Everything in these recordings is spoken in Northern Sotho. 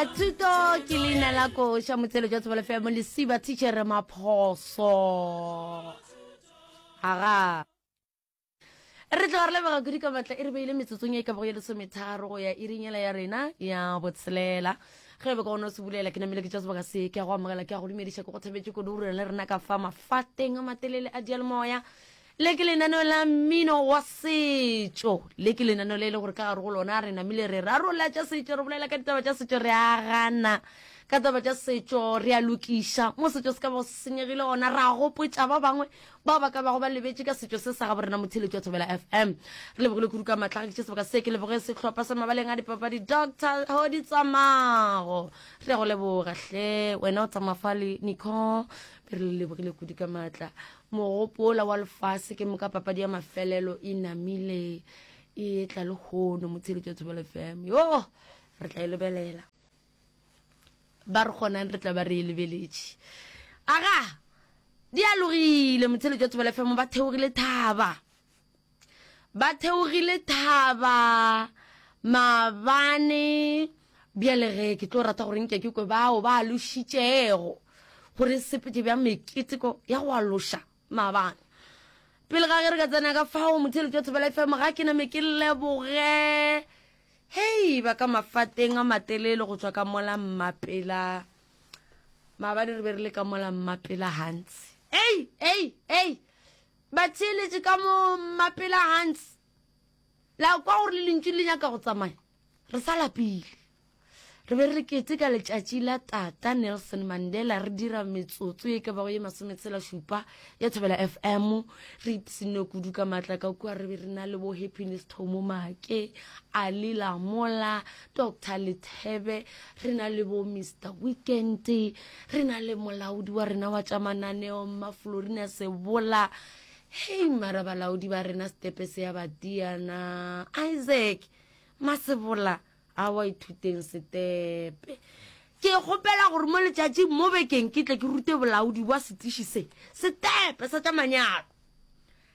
thuto ke leina la koša motshelo jwa tsebalo fela mo lesiba tichere maphoso aga re tlo re lebega kudu ka matla e re beile metsotsong e ka bago ya lesometharo go ya irinyela ya rena ya botshelela ge be ka gona o se bulela ke namele ke tša sebaka se ke ya go amogela ke ya go dumediša ke go thabetše kodurela le rena ka fa mafateng a matelele a dialemoya Le ke lenaneo la mmino wa setšo. Le ke lenaneo le e le gore ka gare go lona re namile re rarola tša setšo, re bolela ka ditaba tša setšo, re a gana ka taba tša setšo, re a lokiša mo setšo se ka bago se senyegile gona, ra gopotša ba bangwe bao ba ka bago ba lebetše ka setšo se sa ga borena motheletši wa thobela fm re lebogile kudu ka maatla ga ke sebaka se ke leboge sehlopha sa mabaleng a dipapadi dr hodi tsamago re go leboga hle wena o tsamafale nico re le lebogile kudu ka maatla Mogopola wa lefase ke moka papadi ya mafelelo e namile e etla le hono motsheletso ya thobelo fm yo re tla e lebelela ba re kgonang re tla ba re e lebeletše aga di alogile motsheletso ya thobelo fm ba theogile thaba Ba theogile thaba mabane bjale ge ke tlo rata gore nke ke kwe bao ba lošitšego gore sepete bja meketeko ya go aloša mabane pele ga ge re ka tsena ka fao motheletši wa thobela fm ga ke name ke leboge hei ba ka mafateng a matelele go tswa ka mola mmapela maabane re be re le ka mola mmapela gantsi ei ei ei Ba theeletše ka mo mapela Hans. La kwa gore le lentšu le nyaka go tsamaya. Re sa lapile. Re be re keteka letšatši la tata Nelson Mandela re dira metsotso ye ka bago ye masometshela šupa ya Thobela FM re ipsine kudu ka matla ka kua re be re na le bo Happiness Thomo Make Ali Lamola Doctor Lethebe, re na le bo Mr Weekend, re na le molaodi wa rena wa tša mananeo mma Florina Sebola. Hei mara balaodi ba rena stepe se ya batiana Isaac Masebola a wa ithuteng stepe. Ke kgopela gore mo letšatšing mo bekeng ke tle ke rute bolaodi bwa setiši se stepe sa tša manyalo.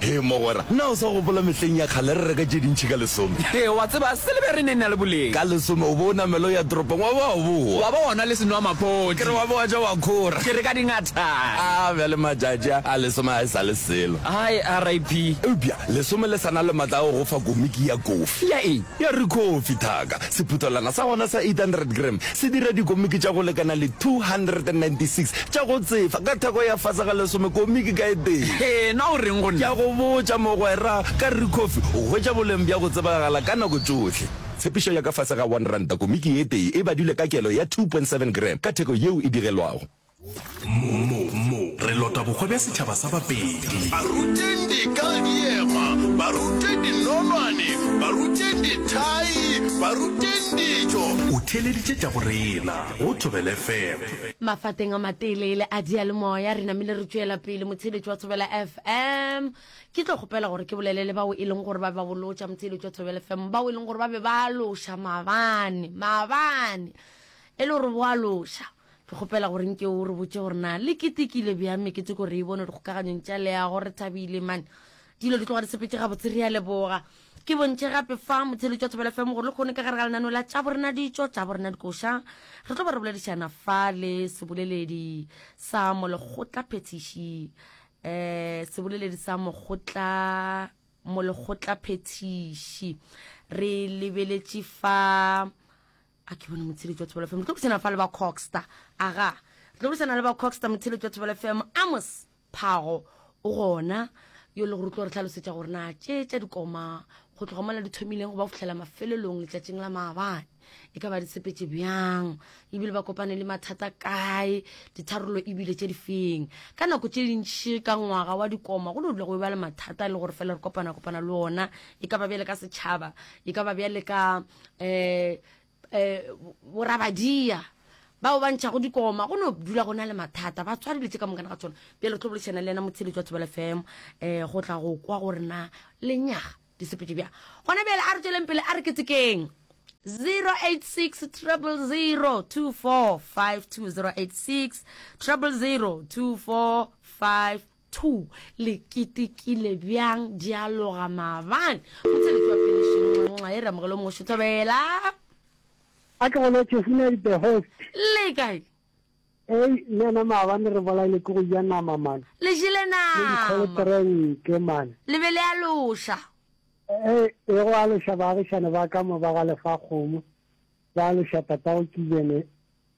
Hee mogwera, na o sa gopola mehleng ya kgale re reka tše dintši ka lesome? Hee, wa tseba, silebere e ne e na le boleng. Ka lesome o be o namela o ya toropong wa ba wa bowa. Wa ba wa nwa le senwamaphodi. Ke re wa be wa ja wa khora. Ke re ka dingatana. A bjale matšatši a, a lesome ga e sa le selo. Hai, RIP. Eupša lesome le sa na le matla a go go fa komiki ya kofi. Ya eng? Ya rikhofi, thaka. Sephuthelwana sa gona sa 800 gram se dira dikomiki tša go lekana le 296 tša go tsefa ka theko ya fase ga lesome komiki ka e tee. Hee, na o reng go nna? Ke a go botša, mogwera, ka re Kofi, o hwetša boleng bja go tsebagala ka nako tšohle. Tshepišo ya ka fase ga one ranta komiki e tee e badilwe ka kelo ya 2.7 gram ka theko yeo e digelwago. mo mo re lota bokgwa bja setšhaba sa bapedi baruteng dikadiema barute dinonwane baruteng dithai baruteng dijo o theeleditše tša go rena go thobele fm Mafateng a mateleele a diyalemoya re namile re tšwela pele motheeletši wa Thobela FM. Ke tlo kgopela gore ke bolele le bao e leng gore ba be ba bolotša motheeletši wa Thobela FM, bao e leng gore ba be ba loša mabane, mabane e le gore bo a loša. Ke kgopela gore nke o re botše gore na le ketekile bjang mekete ko re e bone dikgokaganyong tša leago re thabile man dilo di tloga di sepetše gabotse re ya leboga ke bontše gape fa motheletšo wa thobela fm gore le kgone ka gare ga lenano la tša borena ditšo tša borena dikoša re tlo ba re boledišana fa le seboleledi sa molekgotla phethiši um seboleledi sa mokgotla molekgotla phethiši re lebeletše fa a ke bona motshedi jwa thobela fm re tlo buisana fa le ba coxta aga re tlo buisana le ba coxta motshedi jwa thobela fm amos phago o gona yo le gore tlo re tlhalosetša gore na tše tša dikoma go tloga mola di thomileng go ba go fitlhela mafelelong letšatšing la maabane e ka ba di sepetse bjang ebile ba kopane le mathata kae ditharolo ebile tše di feng ka nako tše dintši ka ngwaga wa dikoma go no dula go ba le mathata e le gore fela re kopana kopana le ona e ka ba bjale ka setšhaba e ka ba bjale ka eh eh borabadia bao ba ntšhago dikoma go no dula go na le mathata ba tshware dilo tse ka monkana ga tsona pele re tlo boledišana le ena motsheletso wa thobela fm um eh, go tla go kwa gore na lenyaga disepedi bja gona bjale a re tsweleng pele a re ketsekeng 086 000 2452 086 000 2452 Thu, le kitikile bjang dialoga maabane go tse le tšwa pelešeng nxa e re amogelo mošo thobela. A ke gona Tšhefune a the host. Le kae? Ei nena maabane re bolaile ke go ja nama man. Le jele nama. Le dikgolo terenke man. Le be le aloša. Ei e go aloša baagišane ba ka mo ba ga Lefakgomo ba aloša tatago Kibene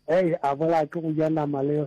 ei a bolaya ke go ja nama le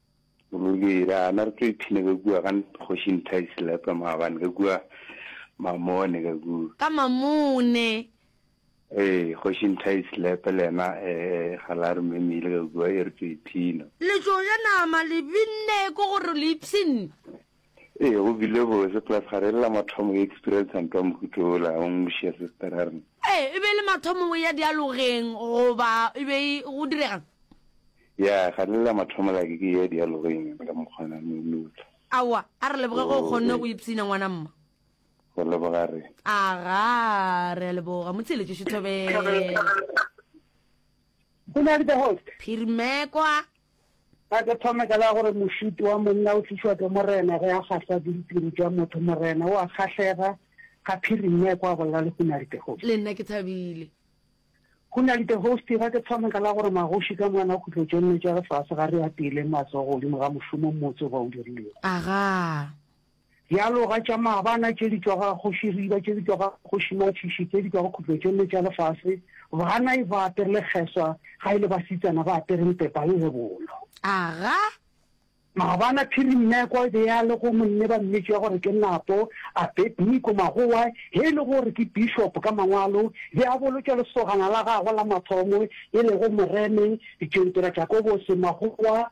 Ruri ra na re tlo iphina ka kua ga kgoši Nthaisi Lepa maabane ka kua Mamone ka kua. Ka Mamone. Ee, kgoši Nthaisi Lepa le yena eh, eh, ga la re memile ka kua e re tlo iphina. Le tlo ja nama le binne ko gore le ipshinne. Ee, go bile bose, plus ga re lela mathomo go experiensa ntwa mohuto ola, o ngwešia sister ya rena. Ee, e be e le mathomo go ya dialogeng goba e be e go direga? Ya, ga re lela mathomo like ke ya dialogeng ka mokgwana no lula. Aowa, a re leboge ge o kgonne go ipsina ngwana mma. Go leboga re. Aga, re a leboga, mo theeletše Shithobela. Go na le the host. Phirimekwa. A ke thome ka la gore mošutu wa monna o tlišwa ke Morena ge a kgahlwa ke ditiro tša motho. Morena o a kgahlega ga phiring ya ekwa bolela le Hunali the Host. Le nna ke thabile. Hunali the Host, ga ke thome ka la gore magoši ka moka na khutlo tše nne tša lefase ga re apeeleng matsogo godimo ga mošomo mmotse o ba o dirilego. Agaa. Bjalo ga tša maabana tše di tšwa go Kgoši Riba, tše di tšwa go Kgoši Matšhiši, tše di tšwa go khutlo tšolle tša lefase, banai ba apere lekgeswa ga e le basetsana ba apere mpepa le lebolo. Aga! Maabana Phirimmeko e be ya le go monne ba mmetšwa gore ke Napo, Abedniko Magowa, ge e le gore ke bishopo ka mangwalo, be a bolotša lesogana la gagwe la mathomo e lego Moreme, Ditsontora Jakobose Magowa,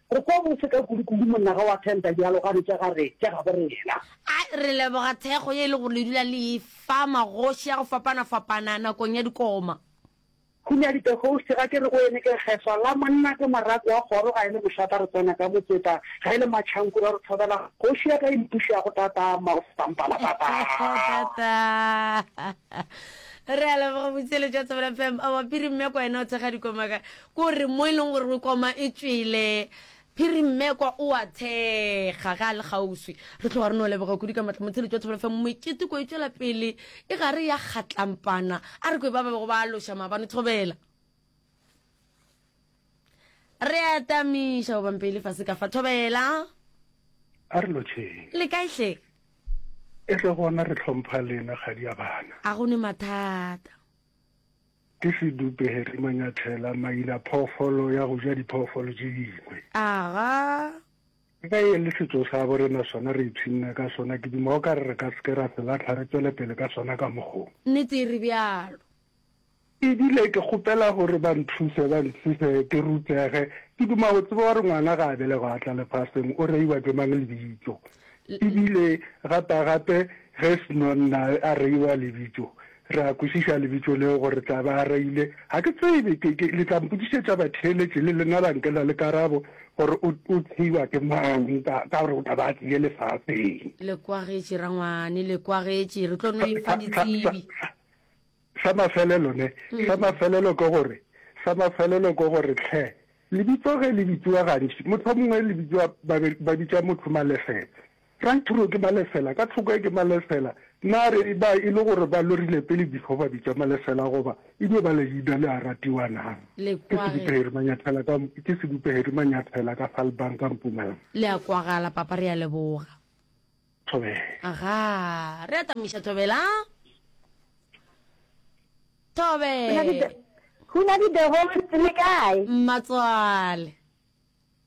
Re kwa bose ka kudukudu monna ga wa tenta dialogane tša ga re tša gabo rena. A re leboga thekgo ye e le gore le dula le e fa magoši a go fapana-fapana nakong ya dikoma. Hunya Ditehouse, ga ke re go ene ke Kgeswa la monna ke morako wa kgoro ga e le mošata re tsena ka motseta ga e le matšhankuru a re thobela kgoši ya ka e mpušago tatama go feta mpala tatama. Re a leboga botšeletšo wa Thobela FM a wapiri mme kwa ena o thekga dikoma ka Ko re mo e leng gore o koma e tšwele. Phiri Mmekwa o a thekga ge a le kgauswi. Re tloga re no leboga kudu ka matla motheletši wa Thobela FM. Mekete ko e tšwela pele e gare ya kgatlampana. A re kwe ba ba bego ba aloša maabane Thobela. Re a tamiša goba mpe e le fase ka fa Thobela. A re lotšheng. Le kae hle? E tle gona re tlhompha lena kgadi ya bana. A go ne mathata. Ke sedupe Harry Manyathela, maina phoofolo ya go ja diphoofolo tše dingwe. Aga. Ke ka e le setso sa bo rena sona re itshwinna ka sona ke duma o ka re re ka seke ra se latlha re tswele pele ka sona ka mokgong. Nnete e re bjalo. E bile ke kgopela gore ba nthuse ba nthuse ke rutege ke duma go tseba gore ngwana ga a belegwa a tla lefaseng o reiwa ke mang lebitso e bile gapa gape ge seno nna a reiwa lebitso Re a kwešiša lebitso leo gore tla ba a reile, Ga ke tsebe, ke, ke, le tla mpotšišetša batheeletši, le lena la nkela le karabo, gore o, o theiwa ke mang, ka, ka gore o tla ba a tlile lefaseng. Le kwagetše, rangwane, le kwagetše. Re tlo no e fa ditsebi. Sa, sa, sa mafelelo, ne, mm. sa mafelelo ke gore, sa mafelelo ke gore, tlhe, lebitso ge le bitsiwa gantši, motho mongwe le bitsiwa, ba, ba bitša motho malefetse. Frank Thuro ke Malesela, ka thoko ke Malesela, na re ba e le gore ba lorile pele before ba bitša Malesela goba e no ba leina le a ratiwa na? Ke Sedupeheri Manyathela ka, ke Sedupeheri Manyathela ka Falbang ka Mpumalanga. Le a kwagala papa re a leboga. Thobela. Aga, re a tamiša Thobela. Thobe. Hunadi the Holy le kae? Mmatswale.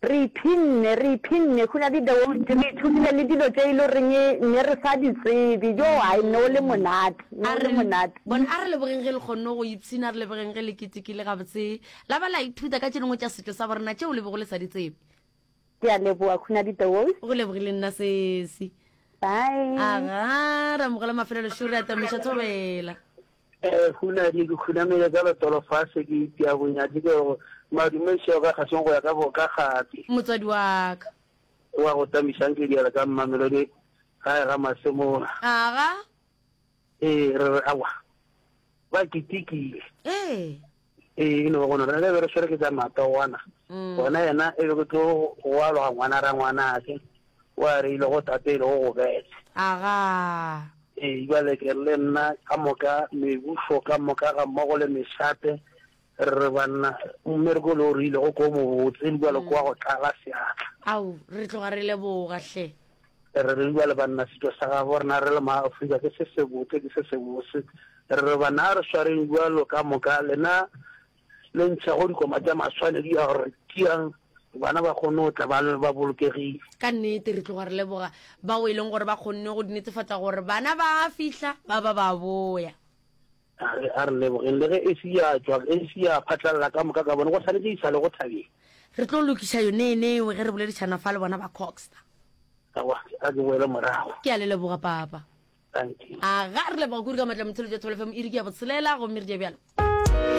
Re iphinne, re iphinne, go na le deontši, re ithutile le dilo tše e le goreng ne re sa di tsebe. Yo, ai, ne o le monate, ne A o le re, monate. bona, a re lebogeng ge le kgonne go ipshina, a re lebogeng ge le ketekile gabotse, la ba la ithuta ka tše dingwe tša setšo sa borena tšeo le bego le sa di tsebe. Ke a leboga, go na le deontši. Go lebogile nna, sesi. Bye. Agaa, ra mo gola mafelelo, šo re atamiša thobela. Ee, hunadi, ke khunamile ka letolo fa se ke itia bonya tse ke go madume seo ka kgasong go ya ka boka gape. Motswadi wa ka. Wa go tamišang ke diela ka Mmamelodi gae ga Masemola. Aga. Ee, re re awa. Ba ketekile. Ee. Ee, ke no ba gona re be re swere ke tsa matogwana gona yena e be ke tlo go aloga ngwana ra ngwanake o a re ile go tate e le go go bete aga ee jale ke le nna ka moka mebuso ka moka ga mmogo le mesate re banna mmereko le o re ile go ko mobotse jale kwa go tlala seatla au re tloga re leboga hle Re re bjale banna setšo sa gabo rena re le ma Afrika ke se sebotse ke se sebose. Re re banna a re swareng bjalo ka moka lena le ntšha go dikoma tša maswanedi a gore tiang bana ba kgonne go tla ba le ba bolokegile. Ka nnete re tloga re leboga bao e leng gore ba kgonne go netefatsa gore bana ba a fihla ba ba ba boya. A re, A re lebogeng, le ge Esi ya tšwa, Esi ya phatlalala ka moka ka bone, go swanetše e sa le go thabile. Re tlo lokiša yoneeneo ge re boledišana fa le bona ba Coxta. A kwa, a ke boele morago. Ke a le leboga, Papa. Thank you. Aga, re leboga kudu ka matla mothelotša Thobela FM iri ke ya botshelela, gomme re dia bjalo.